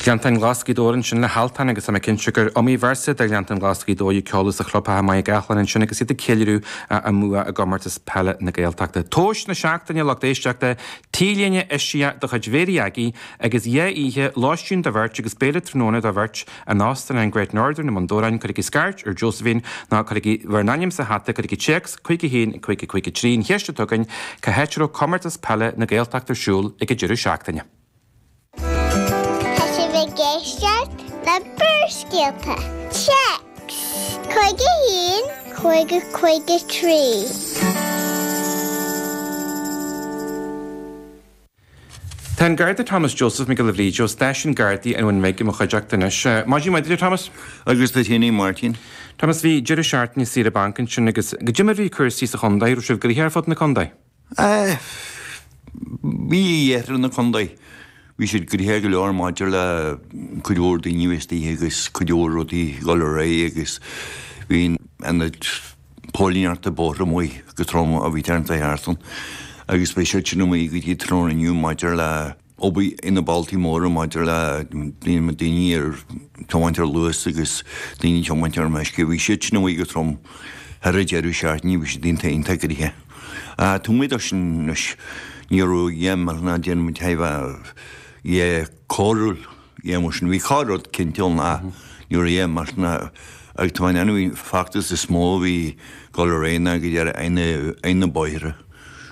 Gleanntáin Ghlas' Gaoth Dobhair ansin le hAltan agus tá mé cinnte gur iomaí véarsa de 'Ghleanntáin Ghlas' Gaoth Dobhair' a ceoladh sa chlubtheach i Machaire Gathlán ansin agus iad ag ceiliúradh a mbua i gComórtas Peile na Gaeltachta. Duais na seachtaine, lucht éisteachta, T-léine eisiach de chuid Mhéirí Aggie agus dhá oíche lóistín do bheirt agus béile tráthnóna do bheirt, in Óstán an Great Northern i mBun Dobhráin, cuirigí scairt ar Josephine nó cuirigí bhur n-ainm sa hata, cuirigí téacs 51553, an cheist atá againn, cá háit a raibh Comórtas Peile na Gaeltachta ar siúl ag an deireadh seachtaine. Tá sibh ag éisteacht le Barrscéalta, téacs 51553. Tá an Garda Thomas Joseph Mac Giolla Bhríde ó Stáisiún Gardaí an Bhun Bhig i mo chuideachta anois. Maidin mhaith duit, a Thomas. Agus duit fhéin, a Mháirtín. Thomas, bhí deireadh seachtaine saoire bainc ansin agus caidé mar a bhí cúrsaí sa chontae. Raibh sibh gnoitheach ar fud na contae? Á, bhí iarthar na contae, bhí siad gnoitheach go leor maidir le cuid mhór daoine a bhí istoíche agus cuid mhór rudaí ag dul ar aghaidh agus bhí an tAonad Póilíneachta Bóithre amuigh go trom a bhí thar an deireadh seachtaine agus beidh siad sin amuigh go dtí tráthnóna inniu maidir le obair ar na bealtaí móra maidir le daoine ag tiomáint ar luas agus daoine ag tiomáint ar meisce. Bhí siad sin amuigh go trom thar an deireadh seachtaine, bhí siad iontach iontach gnoitheach. Taobh amuigh dó sin anois, ní raibh dhá mbeadh ná déanamh an taibhe dhe cóiriúil. Dhéan mar sin, bhí cách rud cinnte ann ach nuair a dhéan mar sin a ag tú an ainmhín feachtas is mó a bhí dul ar aghaidh againn ar na bóithre.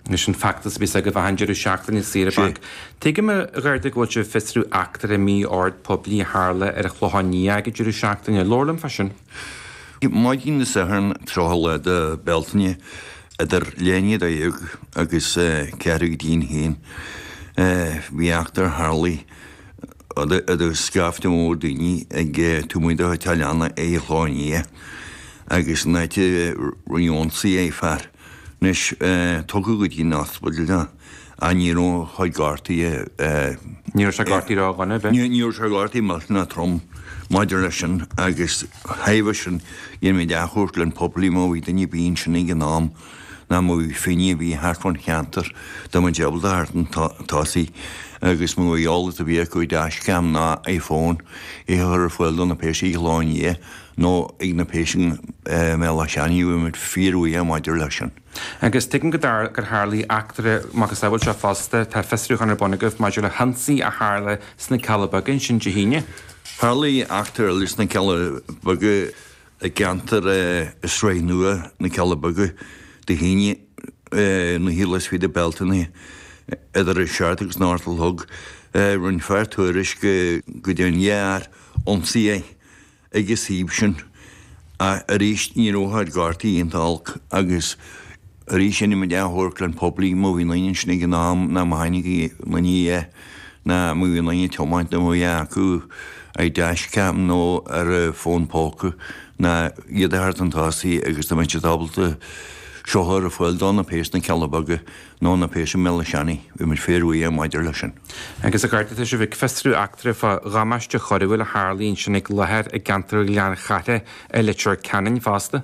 Anois an feachtas a bíos agaibh achan deireadh seachtaine saoire bainc. Tuigim a Gharda go bhfuil sibh ag fiosrú eachtra mí-ord poiblí a tharla ar an Chlochán Liath ag an deireadh seachtaine. Labhair liom fá sin. Maidin na Sathairn, 30 lá de Bealtaine, idir leath i ndiaidh a dó dhéag agus ceathrú go dtí an haon, bhí eachtra a tharlaigh. Tá scaifte mór daoine ag tiomáint ó Italiana é a shlánaithe agus in áit a bheith ionsaí ag fear, anois tugtha go dtí an ospideal atá, ach ní raibh chuid cártaí a. Ní raibh sé cártaí raibh dhuine a bheith. Ní raibh sé cártaí maic ná trom maidir leis sin agus thaobh sin, dhéanfaimid athchuairt le an populi má bhí duine bíonn sin ag an am. nó má bhí duine ar bith thart fán cheantar, dá mbeadh siad ábalta teacht chun tosaigh agus má tá eolas ar bith acu, dashcam nó iPhone, é a chur ar fáil do na péas ar an Chlochán Liath nó ag na péas i mBéal Átha Seanaidh, bheadh muid fíorbhuíoch maidir leis sin. Agus tuigim gur tharlaigh eachtra macasamhail seo fosta, tá fiosrúchán ar bun agaibh maidir le hionsaí a tharla sna Cealla Beaga ansin Dé hAoine? Tharlaigh eachtra eile sna Cealla Beaga i gceantar i Sraith Nua na Cealla Beaga, do shín na Heelys feed a belt in idir an Seart agus Northwell Hug. Roinn fear tuairisc go dtí an ghearr-ionsaí é ag an suíomh sin, ach arís ní raibh air gártaí iontu olc, agus arís rinne mo dhea-amharclann poiblí mo mhíonin ansin ag an am ná mo tháinig ina ndiaidh é. nó má bhí aon duine ag tiomáint a mbeadh acu dashcam nó ar a bhfón póca ná iad a thabhairt chun tosaigh agus dá mbeadh siad ábalta seo a chur ar fáil do na péas sna Cealla Beaga nó na péas i mBéal Átha Seanaidh. Bheadh muid fíorbhuíoch maidir leis sin. Agus a Gharda, tá sibh ag fiosrú eachtra fá dhamáiste choiriúil a tharlaigh ansin ag láthair i gceantar Ghleann Chartha i Leitir Ceanainn fosta.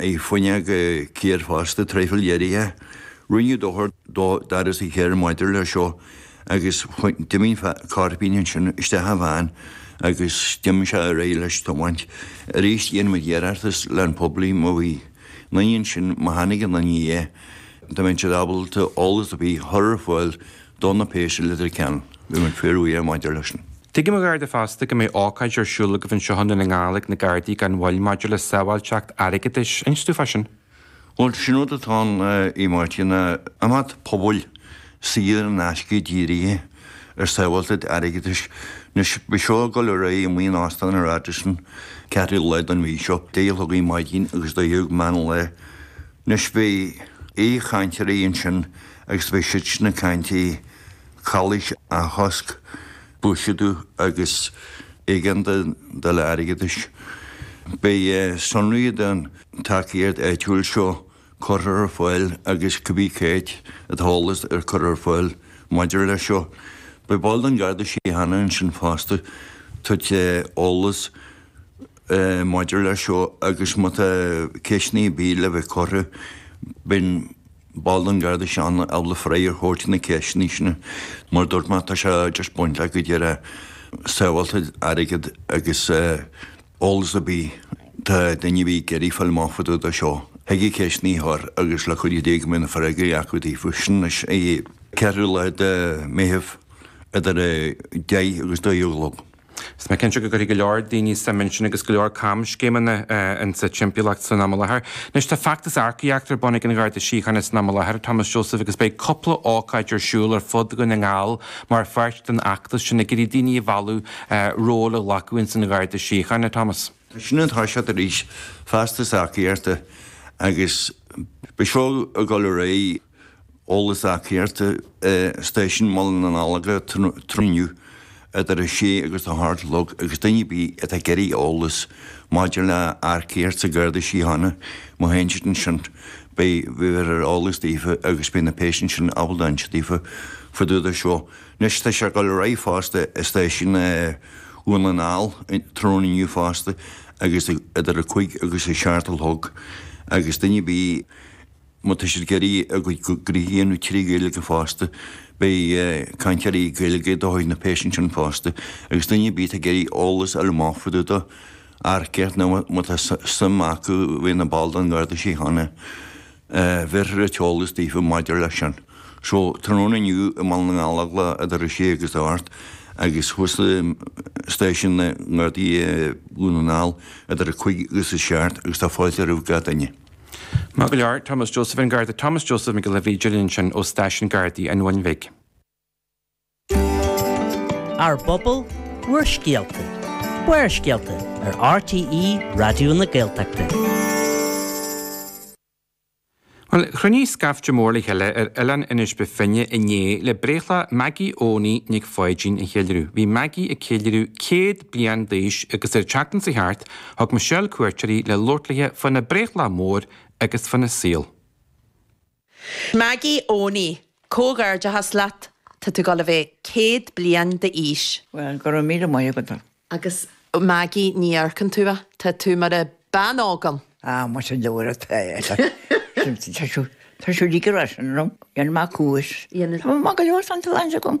Ar fuinneog an chairr fosta, traidhfil dheiridh é. Rinneadh dochar do dhoras an chairr maidir leis seo agus d'imigh Cairpín ansin isteach i bhfean agus d'imigh sé ar aghaidh leis ag tiomáint. Aríst dhéanann muid iarratas leis an poiblí má bhí aon duine ansin má tháinig aon duine air dá mbeadh siad ábalta eolas ar bith a chur ar fáil do na péas i Leitir Ceanainn. Bheadh muid fíorbhuíoch maidir leis sin. Tuigim, a Gharda fosta, go mbeidh ócáid ar siúl agaibh anseo i nDún na nGall ag na Gardaí gan mhoill maidir le sábháilteacht airgeadais. Inis dúinn fá sin? Bhuel, sin rud atá ann, a Mháirtín. Tá imeacht pobail saor in aisce dírithe ar sábháilteacht airgeadais. Anois, beidh seo ag dul ar aghaidh in Óstán an Radisson ceathrú lá den mhí seo, deich a chlog ar maidin agus dó dhéag meán lae. Anois, beidh aoichainteoirí ansin agus beidh siad sin ag caint i Calaois a chosc buiséadú agus éigeandáil airgeadais. Beidh sonraí den tacaíocht áitiúil seo curtha ar fáil agus cibé caidé an t-eolas curtha ar fáil maidir leis seo. Beidh ball den Garda Síochána ansin fosta ag tabhairt eolas maidir leis seo agus má tá ceisteanna ar bith le bheith curtha, beidh an Ball den Garda Síochána ábalta freagra a thabhairt na ceisteanna sin. Mar a dúirt mé, tá sé just baint le go díreach sábháilteacht airgead agus eolas ar bith atá daoine ar bith ag iarraidh fáil amach fá dtaobh dó seo. Thig ceisteanna a chur agus le cuidiú Dé go mbeidh na freagraí acu daofa sin arís 4ú lá de Meitheamh idir 10 agus 12 a chlog. Tá mé cinnte go gcuirfidh go leor daoine suim ansin agus go leor camscéimeanna insa timpeallacht san am i láthair. Anois, tá feachtas earcaíochta ar bun ag an Gharda Síochána san am i láthair, a Thomas Joseph, agus beidh cúpla ócáid ar siúl ar fud Dhún na nGall mar pháirt den fheachtas sin ag iarraidh daoine a mhealladh róil a ghlacadh ins an Gharda Síochána, a Thomas. Tá sé ag toiseacht arís, feachtas earcaíochta, agus beidh seo ag dul ar aghaidh. Eolas earcaíochta Stáisiún Bhaile na nGallóglach tráthnóna inniu idir a sé agus a hocht a chlog agus duine ar bith atá ag iarraidh eolas maidir le earcaíocht sa Gharda Síochána má théann siad ansin beidh bhéarfar eolas daofa agus beidh na péas ansin ábalta insint daofa fá dtaobh de seo. Anois tá sé ag dul ar aghaidh fosta i Stáisiún Dhún na nGall tráthnóna inniu fosta agus idir a cúig agus a seacht a chlog agus duine ar bith Má tá siad ag iarraidh a gcuid gnoithe a dhéanamh trí Ghaeilge fosta, beidh cainteoirí Gaeilge ag dul chuig na péas ansin fosta, agus duine ar bith atá ag iarraidh eolas fá dtaobh de earcaíocht nó má tá suim acu bheith ina ball den Gharda Síochána, bhéarfar an t-eolas daofa maidir leis sin. So, tráthnóna inniu i mBaile na nGallóglach idir a sé agus a hocht agus thuas i Stáisiún na nGardaí i nDún na nGall idir a cúig agus a seacht agus tá fáilte roimh gach duine. Maith go leor, Thomas Joseph an Garda Thomas Joseph Mac Giolla Bhríde linn ansin ó Stáisiún Gardaí an Bhuna Bhig. Ár bPobal, Bhur Scéalta, Barrscéalta ar RTÉ Raidió na Gaeltachta. Bhuel, chruinnigh scaifte mór le chéile ar Oileán Inis Bó Finne inné le breithlá Maggie Eoghanaí Nic Pháidín a cheiliúradh. Bhí Maggie ag ceiliúradh 100 bliain d'aois agus ar an tseachtain seo thart, Thug Michelle cuairt uirthi le labhairt léi faoina breithlá mór agus faoina saol. Maggie Eoghanaí, comhghairdeachas leat, tá tú dul a bheith céad bliain d'aois. Bhuel, go raibh míle maith agat, a. Agus Maggie, ní amharcann tú a, tá tú mar a bean óg ann. Á, más i leabhar atá é, tá, tá siúl, tá siúl ag ar ais ann liom, dhéanfaidh mé cúis, tá maith go leor san, tá an-deas agam.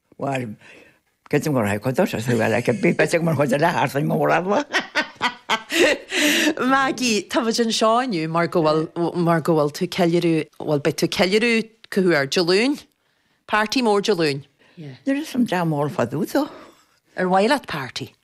Bhuel, creidim gur haiku atá sé, bhuel, ag an bpíopa itigh mar chuid de leath arsain mór eagla. Maggie, táimid anseo inniu mar go bhfuil, mar go bhfuil tú ceiliúradh, bhuel, beidh tú ceiliúradh, cá huair, Dé Luain? Party mór Dé Luain? Níl fhios a'm, damn all fá dtaobh de. Ar mhaith leat party?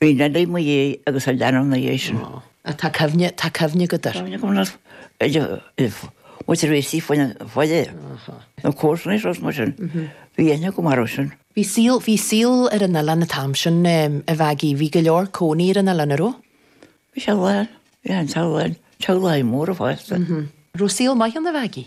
Bhí Nellie i mo dhiaidh agus an leanbh ina dhiaidh sin. Ó. Ach tá cuimhne, tá cuimhne agat air. Cuimhne agam nach bhfuil muid tar éis suí faoina bhaile nó comharsana is rud mar sin. Bhí aithne agam air ó sin. Bhí saol, bhí saol ar an oileán an t-am sin, a Mheaigí. Bhí go leor cónaí ar an oileán, an raibh? Bhí sé lán, bhí an t-ádh linn, teaghlaigh mhóra fásta. An raibh saol maith ann, a Mheaigí?